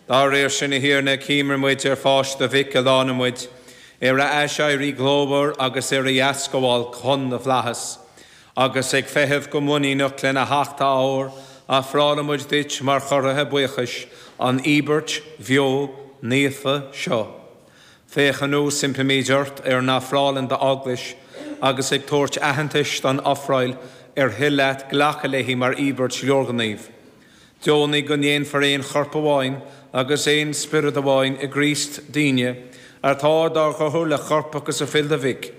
Dá réir sin, a Thiarna, cuimhníonn muid ar pháis do Mhic a shlánaigh muid, ar a aiséirí glórmhar agus ar a dheascabháil chun na bhflaitheas, agus ag feitheamh go muiníneach lena theacht athuair, ofrálann muid duit mar chomhartha buíochais an íobairt bheo naofa seo. Féach anuas, impímid ort, ar a n-ofrálann d'Eaglais, agus ag tabhairt aitheantais don ofráil ar thoil leat glacadh léi mar íobairt leorghnímh, Deonaigh go ndéanfar aon chorp amháin agus aon spiorad amháin i gCríost dínne atá dár gcothú le corp agus fuil do Mhic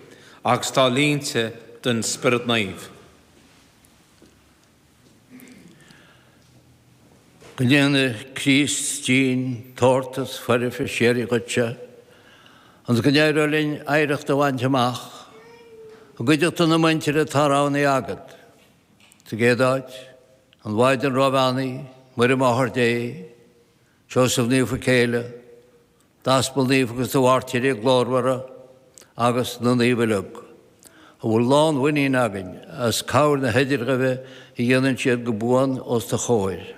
agus atá líonta den Spiorad Naomh. Go ndéana Críost dínn tabhartas foirfe síoraí dhuitse, ionas go n-éireoidh linn oidhreacht a bhaint amach, i gcuideachta na muintire atá roghnaithe agat. Sa gcéad áit, an Mhaighdean Róbheannaithe, Muire Máthair Dé, Seosamh Naofa a Céile, d'Aspail Naofa agus do Mhairtírigh Ghlórmhara agus na Naoimh uilig, a bhfuil lánmhuinín againn as cabhair na hidirghuí a dhéanann siad go buan os do chomhair.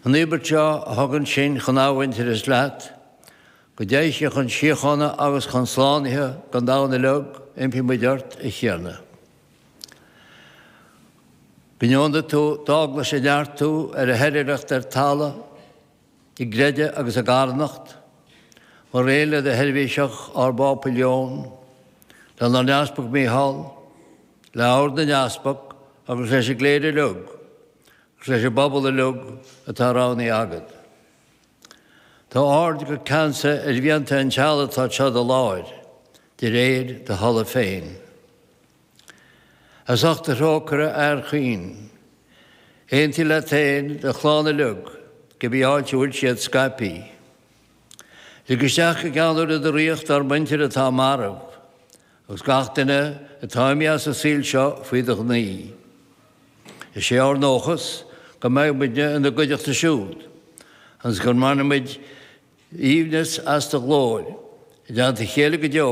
An íobairt seo a thugann sinn chun athmhuintearais leat, go dté sí chun síochána agus chun slánaithe don domhan uilig, impíonn muid ort, a Thiarna. Go ndeonaí tú d'eaglais a neartú ar a hoilithreacht ar talamh, i gcreideamh agus i gcarthanacht, mar aon le do sheirbhíseach ár bPápa Leon, lenár nEaspag Micheál, le Ord na nEaspag agus leis an gcléir uilig agus leis an bpobal uilig atá roghnaithe agat. Tabhair aird go ceansa ar mhianta an teaghlaigh atá anseo i do láthair, de réir do thola féin. As ucht do thrócaire, a Athair chaoin, aontaigh leat féin do chlann uilig cibé áit a bhfuil siad scaipthe. Lig isteach go ceanúil i do ríocht ár muintir atá marbh, agus gach duine atá imithe as an saol seo faoi do ghnaoi. Is é ár ndóchas go mbeidh muidne ina gcuideachta siúd agus go mbainfidh muid aoibhneas as do ghlóir i dteannta a chéile go deo